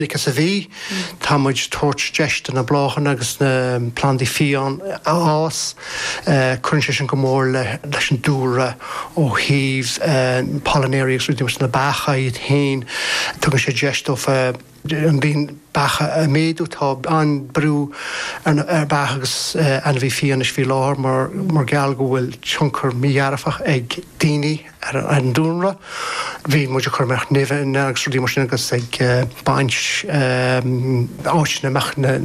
Like sa bhí, tá muid tabhairt deis do na bláthanna agus na plandaí fiáin a fhás. Cuireann sé sin go mór leis an dúlra ó thaobh pollinators agus rudaí mar na beacha iad féin. Tugann sé deis dófa an líon beacha a mhéadú. Tá an-brú ar beacha agus ainmhí fiáin anois faoi láthair mar gheall go bhfuil tionchar mí-dhearfach ag daoine, ar an dúlra. Bhí muid ag cur nimhe agus rudaí mar sin agus ag baint áiteanna amach na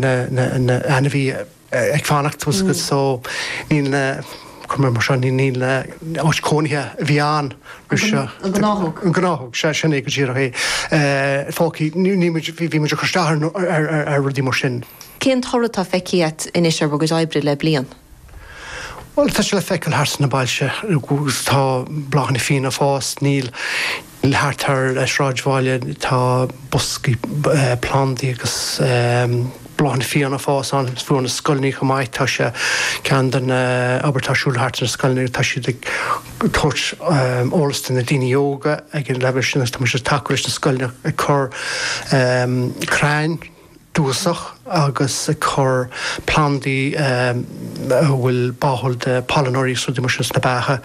n-ainmhí ag fanacht suas so níl na cur mar seo ní níl na háit cónaithe a bhí ann roimh seo. An gnáthóg. An gnáthóg sé sin é go díreach é fágtha ní bhí muid ag cur isteach ar rudaí mar sin. Cén toradh tá feicthe agat anois ar bhur gcuid oibre le bliain. Bhuel, tá sé le feiceáil thart sna bailte. Tá bláthanna fiáine ag fás. Níl thart ar an sráidbhaile, tá boscaí plandaí agus bláthanna fiáine ag fás ann. Faoi na scoileanna chomh maith. Tá sé, ceann de na obair atá ar siúl thart sna scoileanna, tá siad ag tabhairt eolas do na daoine óga ag an leibhéal sin agus tá muid ag tacú leis na scoileanna ag cur crainn, dúchasach agus ag cur plandaí a bhfuil báúil do pailneoirí is rudaí mar sin sna beacha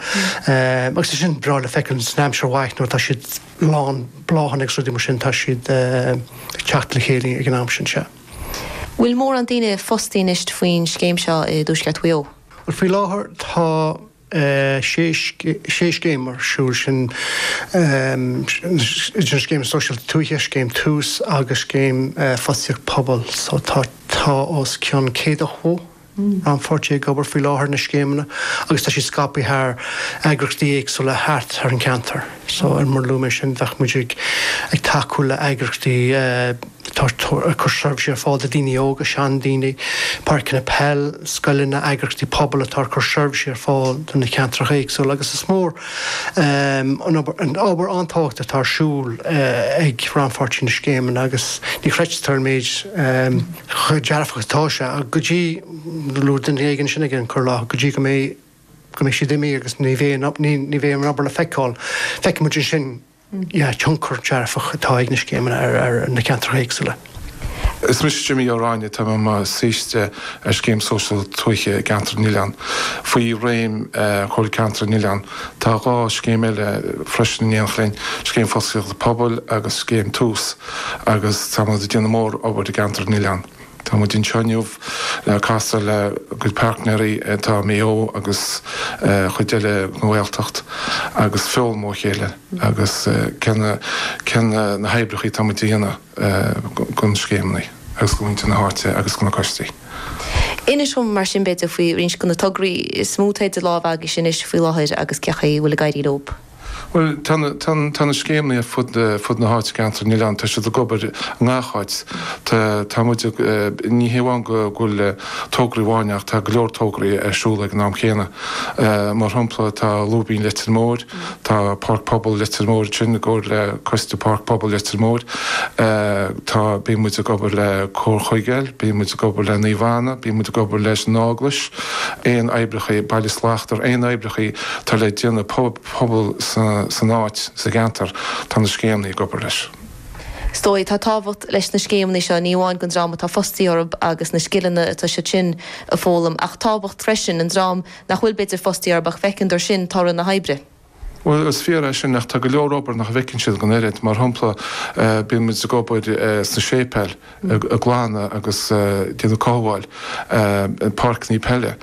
agus tá sin breá le feiceáil san aimsir mhaith nuair atá siad lán bláthanna agus rudaí mar sin tá siad ag teacht le chéile ag an am sin. Sea. Bhfuil mórán daoine fostaí anois faoin scéim seo i dTuaisceart Mhaigh Eo? Bhuel faoi láthair tá. 6 scéim ar siúl, sin iad na Scéim Sóisialta Tuaithe, Scéim Tús agus Scéim Fostaíocht Pobail. Tá os cionn 100 rannpháirtí ag obair faoi láthair ar na scéimeanna agus tá siad scaipthe thar eagraíochtaí éagsúla thart ar an gceantar. So mar a luaigh mé sin, tá muid ag tacú le heagraíochtaí. Tá ag cur seirbhísí ar fáil do daoine óga, seandaoine, páirceanna peil, scoileanna, eagraíochtaí pobail atá ag cur seirbhísí ar fáil do na ceantracha éagsúla agus is mór, obair an-tábhachtach atá ar siúl ag rannpháirtithe na scéimeanna agus ní chreidtear cé chomh dearfach atá sé go dtí go bhfuil duine éigin, sin an chaoi a dtarlaíonn, go dtí go mbeidh siad imithe agus ní bheidh an obair le feiceáil. Feicimid ansin. an tionchar dearfach atá ag na scéimeanna ar na ceantracha éagsúla. Is mise Jimí Ó Ráighne. Táim i mo shaoiste ar Scéim Sóisialta Tuaithe i gCeantar na nOileán, faoi réim Chomhairle Ceantar na nOileán. Tá dhá scéim eile freisin in éineacht linn, Scéim Fostaíochta Pobail agus Scéim Tús, agus táimid ag déanamh mór obair i gCeantar na nOileán. Tá muid anseo inniu le casadh lenár gcuid páirtnéirí, tá Maigh Eo agus cuid eile den Ghaeltacht agus foghlaim ó chéile agus cén cineál oibreacha atá muid a dhéanamh do na scéimeanna agus do mhuintir na háite agus do na coistí. Inis dhom mar sin b'fhéidir faoi roinnt de na tograí is mó atá idir lámha agaibhse anois faoi láthair agus cén chaoi a bhfuil ag éirí leo. Bhuel, tá na scéimeanna ar fud na háite, i gCeantar na nOileán, tá siad ag obair i ngach áit. Tá, tá muid ag, ní hé amháin go bhfuil tograí amháin ach tá go leor tograí ar siúl ag an am céanna. Mar shampla, tá Lúibín Leitir Móir, tá Páirc Pobail Leitir Móir ansin i gcomhar le Coiste Páirc Pobail Leitir Móir. Tá, bíonn muid ag obair le Comhar Chuigéal, bíonn muid ag obair le Naomh Anna, bíonn muid ag obair leis an Eaglais, aon oibreacha, Baile Slachtmhar, aon oibreacha, atá le déanamh le pobal san áit, sa gceantar, tá na scéimeanna ag obair leis. Is dóigh, tá tábhacht leis na scéimeanna seo, ní amháin don dream atá fostaithe orthu agus na scileanna atá siad sin ag foghlaim, ach tábhacht freisin don dream nach bhfuil b'fhéidir fostaithe orthu ach feiceann siad sin toradh na hoibre. Bhuel, is fíor é sin, ach tá go leor obair nach bhfeiceann siad an oiread, mar shampla, bíonn muid ag obair sna séipéil, ag glanadh agus ag déanamh cothabháil páirceanna peile,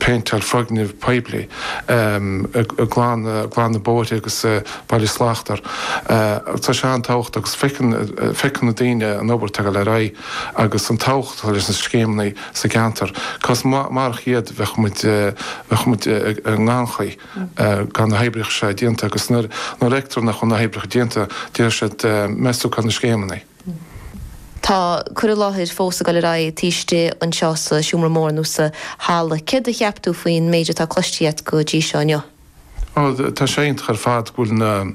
péinteáil foirgnimh poiblí, ag glanadh, glanadh bóithre agus baile slachtmhar. Tá sé an-tábhachtach agus feiceann, feiceann na daoine an obair atá ag dul ar aghaidh agus an tábhacht atá leis na scéimeanna sa gceantar. 'Cause murach iad bheadh muid, bheadh muid i ngannchuid. gan na hoibreacha seo déanta agus nuair a fheictear nach bhfuil na hoibreacha déanta beidh siad ag missáil na scéimeanna. Tá cur i láthair fós ag dul ar aghaidh taobh istigh anseo sa seomra mór nó sa halla. Céard a cheap tú faoin méid atá cloiste agat go dtí seo inniu? Ó tá sé iontach ar fad go bhfuil na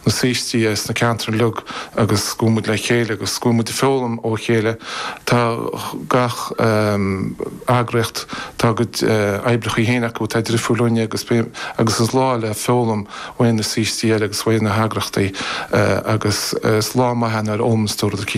saoistí as na ceantair uilig agus go bhfuil muid le chéile agus go bhfuil muid ag foghlaim ó chéile. Tá gach eagraíocht, Tá a gcuid oibreacha féin acu atá difriúil linne agus agus is lá le foghlaim ó na saoistí eile agus ó na heagraíochtaí agus is lá maith é ar an mbealach sin.